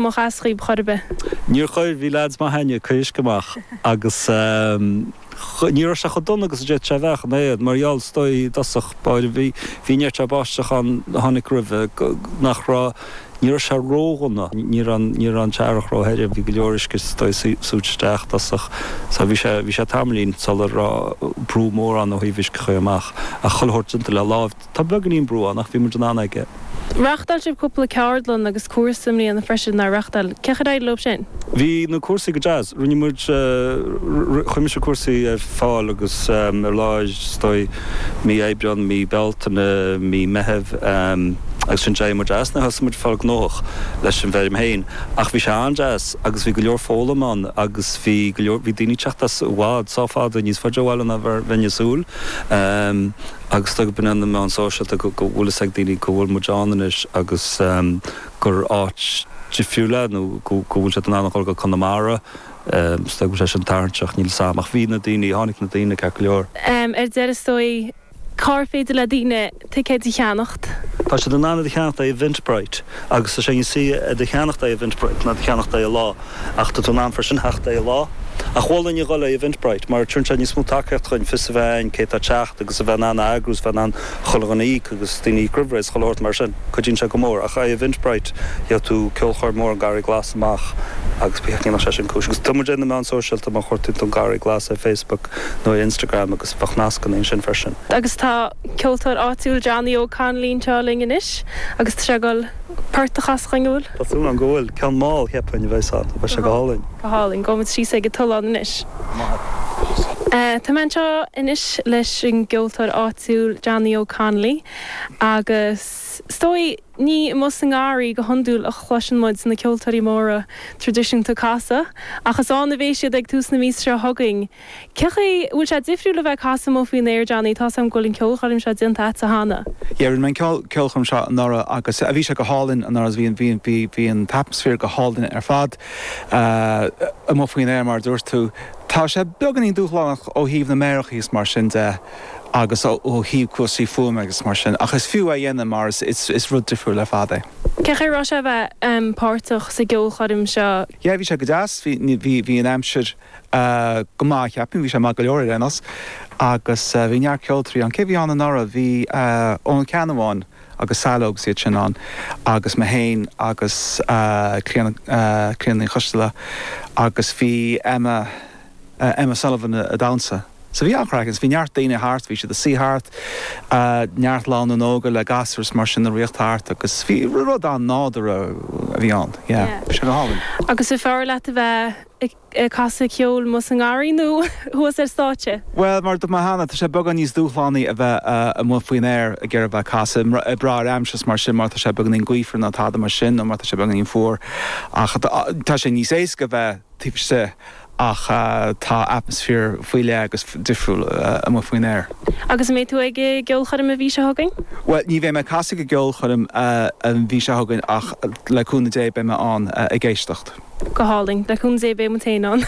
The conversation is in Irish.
mo chas dhaoib chor ar bith. Níor chuir, bhí leaids maith a'inn ag uisce amach agus ní raibh sé chomh dona agus a d'fhéad sé a bheith ach an oiread mar gheall is dóigh i dtosach báire bhí, bhí neart báisteach ann a tháinig roimhe go, nach raibh, ní raibh sé ródhona, ní raibh an, ní raibh an t-earrach róthirim, bhí go leor uisce is dóigh súite isteach i dtosach so bhí sé, bhí sé tamaillín sular raibh brú mór ann ó thaobh uisce a chur amach ach chuile shórt déanta le láimh. Tá beagainín brú ann ach bhí muid in ann aige. Reachtáil sibh cúpla ceardlann agus cúrsa i mbliana freisin, nár reachtáil? Cén chaoi ar éirigh leo sin? Bhí na cúrsaí go deas. Rinne muid, chuir mise cúrsaí ar fáil agus ó lár is dóigh mí Aibreán, mí Bealtaine, mí Meithimh agus ansin d'éirigh muid as. Thosaigh muid ag fáil gnóthach leis an bhfeirm féin ach bhí sé an-deas agus bhí go leor foghlaim ann agus bhí go leor, bhí daoine ag teacht as i bhfad, sách fada, níos faide ó bhaile ná bheinn ag súil. agus is dóigh go bhfóineann na meáin sóisialta go bhfuil fhios ag daoine go bhfuil muid ann anois agus gur áit difriúil é nó go bhfuil siad in ann a dhul go Conamara, is dóigh go bhfuil sé sin tarraingteach, níl 'fhios a'm ach bhí na daoine, tháinig na daoine ceart go leor. Ar deireadh is dóigh, cár féidir le daoine ticéid a cheannacht? Tá siad in ann iad a cheannacht ó Eventbrite agus tá sé níos saoire iad a cheannacht ó Eventbrite ná iad a cheannacht ar an lá. Ach tá tú in ann freisin theacht ar an lá. Ach mholfainn a dhul ar Eventbrite, mar tugann sé níos mó tacaíocht dhúinn fios a bheith a'inn cé atá ag teacht agus a bheith in ann a eagrú is bheith in ann chuile dhuine a íoc agus daoine a íoc roimh ré is chuile shórt mar sin. Cuidíonn sé go mór. Ach ar Eventbrite, má chuardaíonn tú ceolchoirm mór an Garraí Glas amach agus dhéanfadh sé sin cúis. Agus tá muid ar na meáin sóisialta, má chuardaíonn tú An Garraí Glas ar Facebook nó ar Instagram agus beidh nascanna ansin freisin. Agus tá ceoltóir áitiúil Johnny Óg Connolly anseo linn anois agus tá sé ag dul. Port a chasadh dhúinn. Tá súil agam go bhfuil. Ceann mall, cheapfainn, a bheas ann. Bheadh sé go hálainn. Go hálainn. Gabhaimid síos ag an tollán anois. Tá mé anseo anois leis an gceoltóir áitiúil Johnny Óg Connolly agus is dóigh ní amuigh sa ngarraí go hiondúil a chloiseann muid na ceoltóirí móra traidisiúnta ag casadh ach is ann a bhéas siad ag tús na míosa seo chugainn Cén chaoi, Bhfuil sé difriúil a bheith ag casadh amuigh faoin aer, Johnny? Tá's a'm go bhfuil an ceolchoirm seo déanta a'dsa cheana. Yeah, rinne mé an ceolchoirm seo anuraidh agus bhí sé go hálainn anuraidh, bhí, bhí, bhí, bhí an t-atmaisféar go hálainn ar fad amuigh faoin aer mar a dúirt tú. Tá sé beagáinín dúshlánach ó thaobh na méarachaí is mar sin de agus ó thaobh cúrsaí fuaime agus mar sin ach is fiú é a dhéanamh mar is, is, is rud difriúil ar fad é. Cén chaoi a raibh sé a bheith páirteach sa gceolchoirm seo? Yeah, bhí sé go deas, bhí, bhí, bhí an aimsir. go maith, cheapfainn. Bhí sé maith go leor ar aon nós. Agus bhí neart ceoltoirí ann. Cé bhí ann anuraidh? Bhí Eoghan Ó Ceannabháin agus Saileog is iad sin ann agus mé féin agus Clíona, Clíona Ní Choisteala agus bhí Emma, Emma Sullivan ag damhsa. So bhí an-chraic agus bhí neart daoine thart, bhí siad ag suí thart, neart lánúin óga le gasúir is mar sin ag rith thart agus bhí rud an-nádúrtha a bhí ann. Yeah. Bhí sé go hálainn. Agus ar fearr leat a bheith? ag casadh ceoil amuigh sa ngarraí nó thuas ar stáitse? Bhuel, mar a dúirt mé cheana, tá sé beagán níos dúshlánaí a bheith amuigh faoin aer ag iarraidh a bheith ag casadh ag brath ar an aimsir is mar sin má tá sé beagáinín gaofar nó tada mar sin nó má tá sé beagáinín fuar ach tá sé níos éasca a bheith taobh istigh ach tá atmaisféar faoi leith agus difriúil amuigh faoin aer. Agus an mbeidh tú ag an gceolchoirm an mhí seo chugainn? Bhuel, ní bheidh mé ag casadh ag an gceolchoirm an mhí seo chugainn ach Le cúnamh Dé beidh mé ann ag éisteacht. Go hálainn. Le cúnamh Dé beidh muid féin ann.